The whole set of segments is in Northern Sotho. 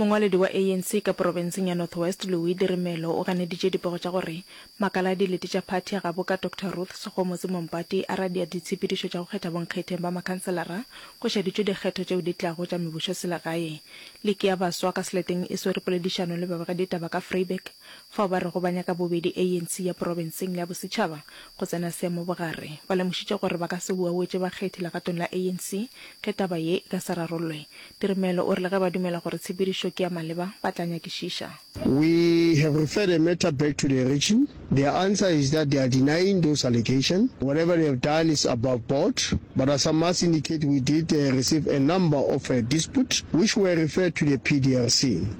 Mongwaledi wa ANC ka porofenseng ya North West Louis Dirimelo o ganeditše dipego tša gore makala a dilete tša phathi a gabo ka Doctor Ruth Sekgomotse Mompati a radia ditshepedišo tša go kgetha bonkgetheng ba makhanselara go šaditšwe dikgetho tšeo di tlago tša mebusoselegae. Liki ya Baswa ka seleteng e swere poledišano le babegeditaba ka Vryburg. Fao ba rego ba nyaka bobedi ANC ya porobenseng le ya bosetšhaba go tsena seemo bogare, ba lemošitše gore ba ka se uauetše bakgethi legatong la ANC ge taba ye e ka se rarollwe. Dirimelo o re le ge ba dumela gore tshepedišo ke ya maleba, ba tla nyakišiša. We have referred a matter back to the region, their answer is that they are denying those allegations, whatever they have done is above board, but as I must indicate we did receive a number of disputes which were referred to the PDRC.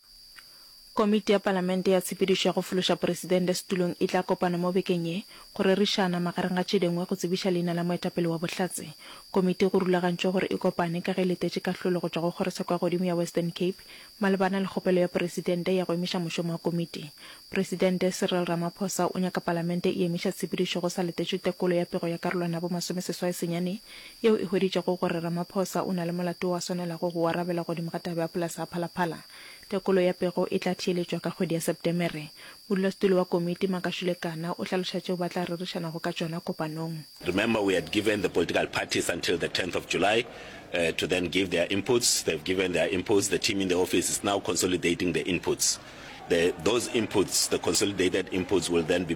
Komiti ya Palamente ya Tshepedišo ya go Fološa Poresidente Setulong e tla kopana mo bekeng ye go rerišana, magareng ga tše dingwe, go tsebiša leina la moetapele wa Bohlatse. Komiti go rulagantšwe gore e kopane ka ge e letetše kahlolo go tšwa go Kgorotsheko ya Godimo ya Western Cape malebana le kgopelo ya Poresidente ya go emiša mošomo wa komiti. Poresidente Cyril Ramaphosa o nyaka Palamente e emiša tshepedišo go sa letetšwe tekolo ya pego ya karolwana ya bo masome seswai senyane yeo e hweditšego gore Ramaphosa o na le molato o a swanelago go o arabela godimo ga taba ya polase ya Phalaphala. Tekolo ya pego e tla theeletšwa ka kgwedi ya Sepetemere. Modulasetulo wa komiti, Makashule Kana, o hlaloša tšeo ba tla rerišanago ka tšona kopanong. Remember we had given the political parties until the tenth of July to then give their inputs, they have given their inputs, the team in the office is now consolidating the inputs, the those inputs, the consolidated inputs will then be.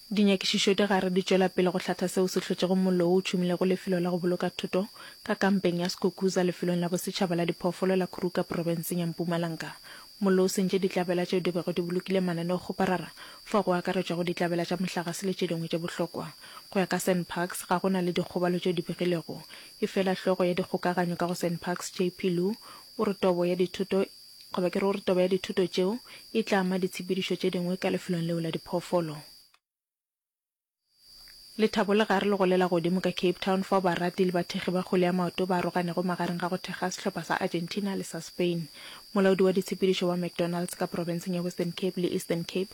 Dinyakišišo di gare di tšwela pele go hlatha seo se hlotšego mollo wo o tšhumilego lefelo la go boloka thoto ka kampeng ya Skukuza lefelong la bosetšhaba la diphoofolo la Khuruka profenseng ya Mpumalanga. Mollo o sentše ditlabela tšeo di bego di bolokile mananeokgoparara, fao go akaretšwago ditlabela tša mohlagase le tše dingwe tše bohlokwa. Go ya ka Sanparks, ga go na le dikgobalo tšeo di begilwego. Efela hlogo ya dikgokaganyo ka go Sanparks, JP Lu, o re tobo ya dithoto e Goba ke re gore toba ya dithuto tšeo e tla ama ditshepedišo tše dingwe ka lefelong leo la diphoofolo. Lethabo le gare le go le la godimo ka Cape Town fao barati le bathekgi ba kgwele ya maoto ba aroganego magareng ga go thekga sehlopha sa Argentina le sa Spain. Molaodi wa ditshepedišo wa McDonald's ka profenseng ya Western Cape le Eastern Cape,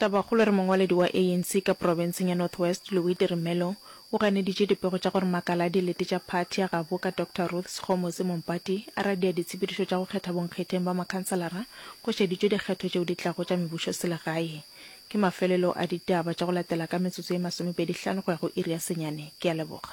Tabakgolo re mongwaledi wa ANC ka profenseng ya North West Louite Rimelo o ganeditše dipego tša gore makala a dilete tša phathi ya gabo ka Doctor Ruth Sekgomotse Mompati a radia ditshepedišo tša go kgetha bonkgetheng ba makhanselara go šeditšwe dikgetho tšeo di tlago tša mebušoselegae ke mafelelo a ditaba tša go latela ka metsotso ye masomepedi hlano go ya go iri ya senyane. Ke a leboga.